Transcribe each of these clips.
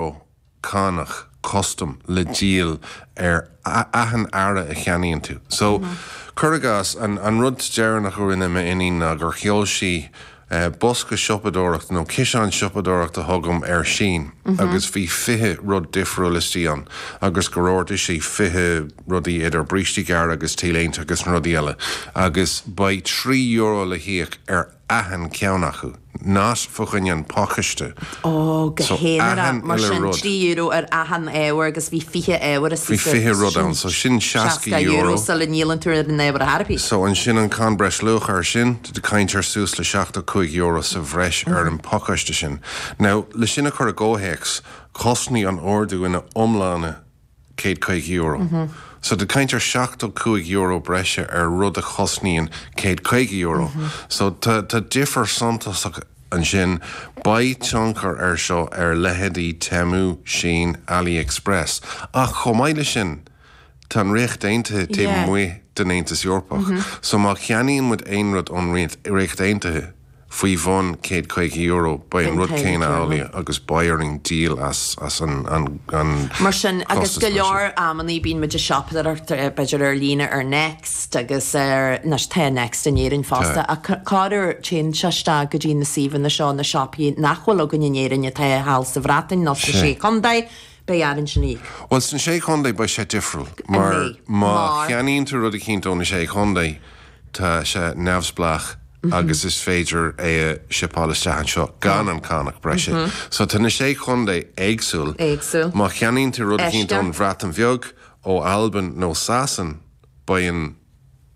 ó cánach custam le díol ar achan earra a cheannaíonn tú. So, cuir i gcás, an rud deireanach a rinne m'iníon ná gur sheol sí bosca siopadóireachta nó ciseán siopadóireachta chugam ar Shein agus bhí fiche rud difriúil istigh ann agus gur ordaigh sí fiche rudaí idir brístí gearra agus t-léinte agus na rudaí eile agus beidh trí euro le híoc ar achan ceann acu. Not fá choinne an phacáiste. Ó, go haonarach. So, achan uile rud. Mar sin, trí euro ar achan ábhar agus bhí fiche ábhar is Bhí fiche rud sin ann. So, sin seasca euro, seasca euro sula ndíolann tú an VAT ar bith. So, ansin an Cáin Breis Luacha ar sin, tá tú ag caint ar suas le seachtó cúig euro sa bhreis ar an pacáiste sin. Now, le sin a chur i gcomhthéacs, chosnaigh an t-ordú ina iomláine céad caoga euro. So tá tú ag caint ar seachtó cúig euro breise ar rud a chosnaíonn céad caoga euro. So tá difear suntasach ansin. Beidh tionchar ar seo ar leitheidí Temu, Shein, Ali Express. Ach chomh maith le sin tá an Ríocht Aontaithe taobh amuigh den Aontas Eorpach. So má cheannaíonn muid aon rud ón Ríocht Aontaithe, faoi bhun €150, beidh an rud céanna amhlaidh agus beidh orainn díol as an chostas mar sin. Agus go leor amannaí bíonn muid ag siopadóireacht b'fhéidir ar líne ar Next agus ar, anois tá Next in Éirinn fosta, ach corruair téann sé isteach go dtí na suíomhanna seo, na siopaí nach bhfuil againn in Éirinn atá thall sa Bhreatain nó sna Sé Chontae, beidh orainn sin a íoc. Bhuel sna Sé Chontae beidh sé difriúil mar má cheannaíonn tú rud eicínt ó na Sé Chontae, Tá sé neamhspleách agus is féidir é a shipáil isteach anseo gan an cánach breise. So tá na sé chontae éagsúil. Má cheannaíonn tú rud eicínt ón Bhreatain Bheag, ó Albain nó Sasain, beidh an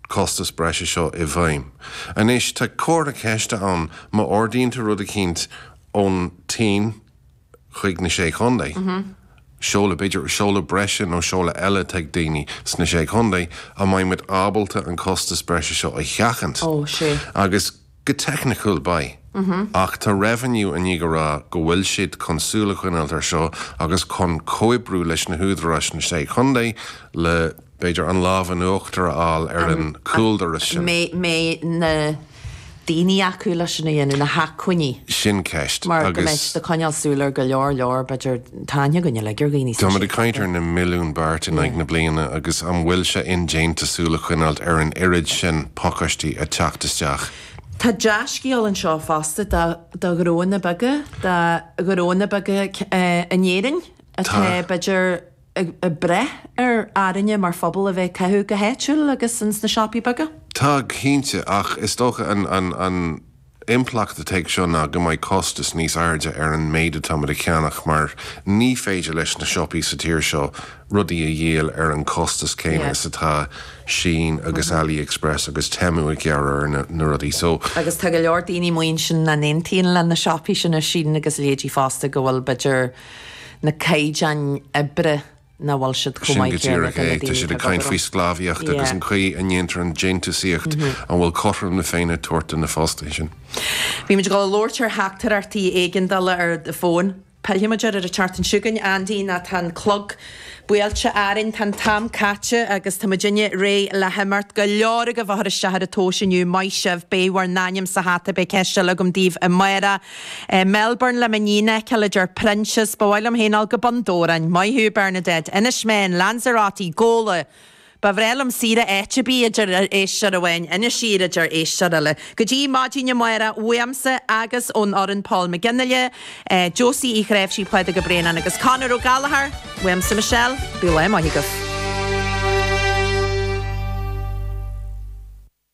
costas breise seo i bhfeidhm. Anois, tá comhartha ceiste ann má ordaíonn tú rud eicínt ón tSín, chuig na Sé Chontae, seoladh, b'fhéidir seoladh breise nó seoladh eile ag daoine sna Sé Chontae, an mbeidh muid ábalta an costas breise seo a sheachaint? Ó, sea. Agus go teicniciúil, beidh. Ach tá revenue i ndiaidh a rá go bhfuil siad chun súil a choinneáilt ar seo agus chun comhoibriú leis na húdaráis sna Sé Chontae le. B'fhéidir an lámh in uachtar a fháil ar an chúldoras sin. An mbeidh na daoine acu leis sin a dhéanamh, na hacmhainní? Sin ceist. Mar go mbeidh siad ag coinneáil súil ar go leor leor, b'fhéidir, tá aithne againn uilig ar dhaoine sa séasúr seo. Táimid ag caint ar na milliúin beart in aghaidh na bliana agus an bhfuil sé indéanta súil a choinneáilt ar an oiread sin pacáistí ag teacht isteach? Tá dea-scéal anseo fosta do do ghnóanna beaga, do ghnóanna beaga in Éirinn atá, b'fhéidir, ag brath ar orainne mar phobal a bheith ag caitheamh go háitiúil agus ins na siopaí beaga. Tá go cinnte, ach is dócha an impleacht atá ag seo ná go mbeidh costas níos airde ar an méid atáimid ag ceannach mar ní féidir leis na siopaí sa tír seo rudaí a dhíol ar an costas céanna is atá Shein agus Ali Express agus Temu ag gearradh ar na rudaí so Agus tá go leor daoine amuigh ansin nach n-aontaíonn le na siopaí sin, Shein agus a leithéidí fosta go bhfuil b'fhéidir, na caighdeáin oibre nach bhfuil siad chomh maith céanna ag na daoine atá ag obair ann. Sin go díreach é. Tá siad ag caint faoi sclábhaíocht agus an chaoi a ndéantar an déantúsaíocht. An bhfuil cothrom na Féinne ag tabhairt do na fostaithe sin? Bhí muid ag dul a labhairt ar theachtaireachtaí éigeandála ar an bhfón. Pillfidh muid air an tseachtain seo chugainn, Andy nó tá an clog buailte orainn, tá an t-am caite agus tá muid uilig réidh le himeacht. Go leor agaibh a chuir isteach ar an tomhas inniu, maith sibh! Beidh bhur n-ainm sa hata Beidh ceist eile agam daoibh amáireach. Melbourne le m'iníon Ethel, a deir Proinsias. Ba mhaith liom féin dul go Bun Dobhráin. Maith thú, Bernadette. Inis Meáin, Lanzarote, Gabhla. Ba bhreá liom saoire áit ar bith, a deir éisteoir amháin. Inis Oírr, a deir éisteoir eile. Go dtí maidin amáireach uaimse agus ón fhoireann Paul McGinley, Josie Uí Chnáimhsí, Pádraig Ó Braonáin agus Conor Ó Gallachóir. Uaimse Michelle. Bíodh lá maith agaibh.